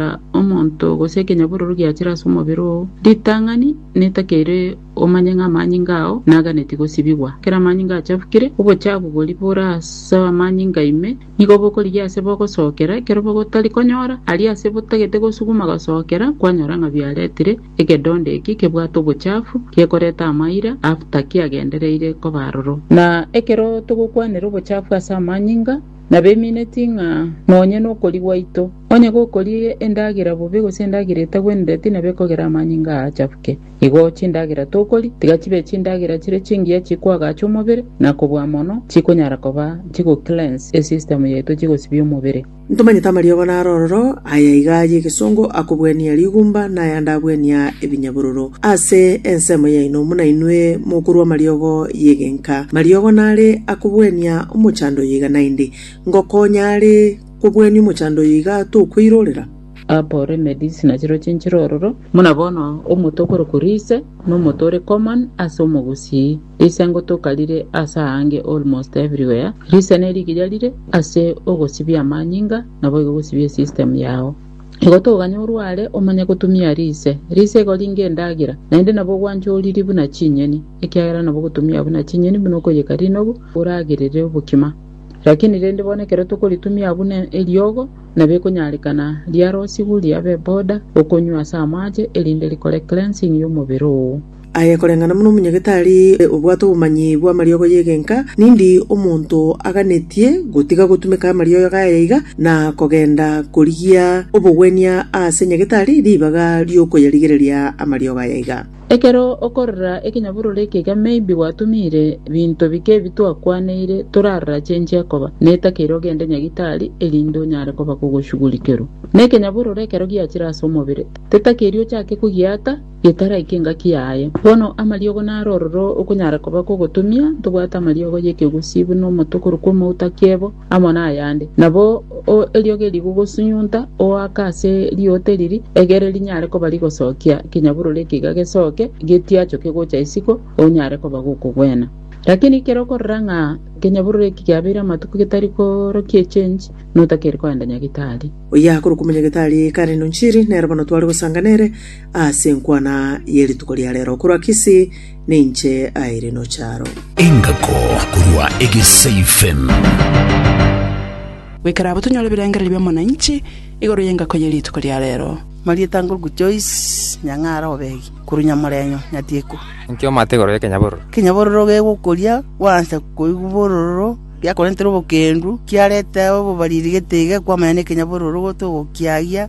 kera omonto gose ekenyabororo giachire ase omobere oo, ritang'ani netakeire omanye ng'a amanyinga ao naganeti gosibigwa. Ekero amanyinga achabukire, obochabu boria bore ase amanyinga ime nigo bokorigia ase bogosookera, ekero bogotari konyora aria ase botagete gosuguma gosookera, kwanyora ng'a biaretire egedondo eki kebwate obochafu, gekoreta amaira after kiagendereire koba aroro. Na ekero togokwanera obochafu ase amanyinga, na bemineti ng'a nonye nokori gwaito, onye gokorie endagera bobe gose endagera etagwenereti nabo ekogera amanyinga aa achafuke. Igo chindagera tokori, tiga chibe chindagera chire chingiya chikoagacha omobere, na kobua mono chikonyara koba chigocleanse esystem yaito chigosibia omobere. Ntomanyete amariogo naro ororo, aya iga ay'egesongo, akobuania rigumba, na ayande abuania ebinyabororo. Ase ensemo yaino buna inwe mokorua amariogo y'egenka, mariogo nare akobwenia omochando oyo iga naende, ngokonya are kobwenia omochando oyo iga tokweirorera? Apore Medicine na chirochio inchire ororo. Buna bono omote okorokwa Lise nomote ore common ase omogusii. Lise ngotoka rire ase aange almost everywhere. Lise nerigiya rire ase ogosibia amanyinga naboigo gosibia esystem yao. Igo toganye orware omanye gotumia rise. Rise igo ringe endagera, naende nabo ogwancha oriri buna chinyeni, ekiagera nabo ogotumia buna chinyeni buna okoyeka rinobu oragerere obokima. Lakini rende bono ekero tokoritumia buna eriogo, nabo ekonyarekana riarosigwe riabe boda okonywa ase amache, erinde rikore cleansing y'omobere oo. Aye koreng'ana buna omonyagetari obwate obomanyi bw'amariogo y'egenka, nindi omonto aganetie gotiga gotumeka amariogo aye iga, na kogenda korigia obogwenia aase nyagetari ribaga ri'okoyarigereria amariogo aye iga. Ekero okorora ekenyabororo ekega maybe gwatumire binto bike ebi twakwaneire torarachenchia koba, netakeire ogende nyagitari erinde onyare koba kogoshugulikerwa. Nekenyabororo ekero giachire ase omobere, tetakeiri ochake kogiata, getara ekengaki yaye. Bono amariogo naro ororo okonyara koba kogotumia, ntobwate amariogo y'ekegusii buna omoto okorokwa omouta kiebo, amo nayande. Nabo eriogo eri gogosunyunta oaka ase rioote riria, egere rinyare koba rigosokia ekenyaburoro ekiiga gesoke getiachoke gocha isiko, onyare koba gokogwena. Lakini ekero okorora ng'a ekenyaburoro eki kiabeire amatuko getari korokia echenji, notakeire koenda nyagetari. Oyio akorokwa omonyagetari Karen Onchiri, nere bono tware gosanga nere. Ase enkwana ye rituko ria rero korwa Kisii, ninche Irene Ocharo. Engako korwa Egesaifen. Goikera abwo tonyore ebirengererio bia Mwananchi igoro y'engako ye rituko ria rero. Marieta Nguku Joyce Nyang'ara Obegi korwa Nyamorenyo, Nyatiku. Inki omate igoro y'ekenyabororo? Ekenyabororo gegokoria gwansa koigwa bororo, giakorentera obokendu, kiareta obobariri getiga kwamanya nekenyabororo gotogokiagia.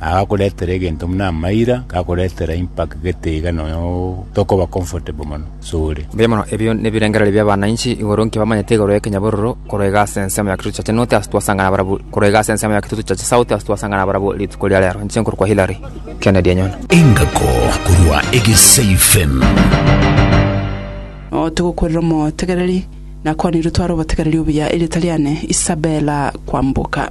Aya gakoretera egento buna amaira, gakoretera impact gete iga nonya tokoba comfortable mono sore. Mbuya mono, ebio nebirengererio bi'abanainchi igoro nki bamanyete igoro y'ekenyabororo korega ase ensemo ya Kitutu Church North ase twasangana barabwo korega ase ensemo ya Kitutu Church South ase twasangana barabwo rituko ria rero. Inche nkorokwa Hillary Kennedy Enyona. Engako korwa Egesei Fm. Oo togokwerera omotegereri, nakwanirwe tware obotegereri obuya, erieta riane Isabella Kwamboka.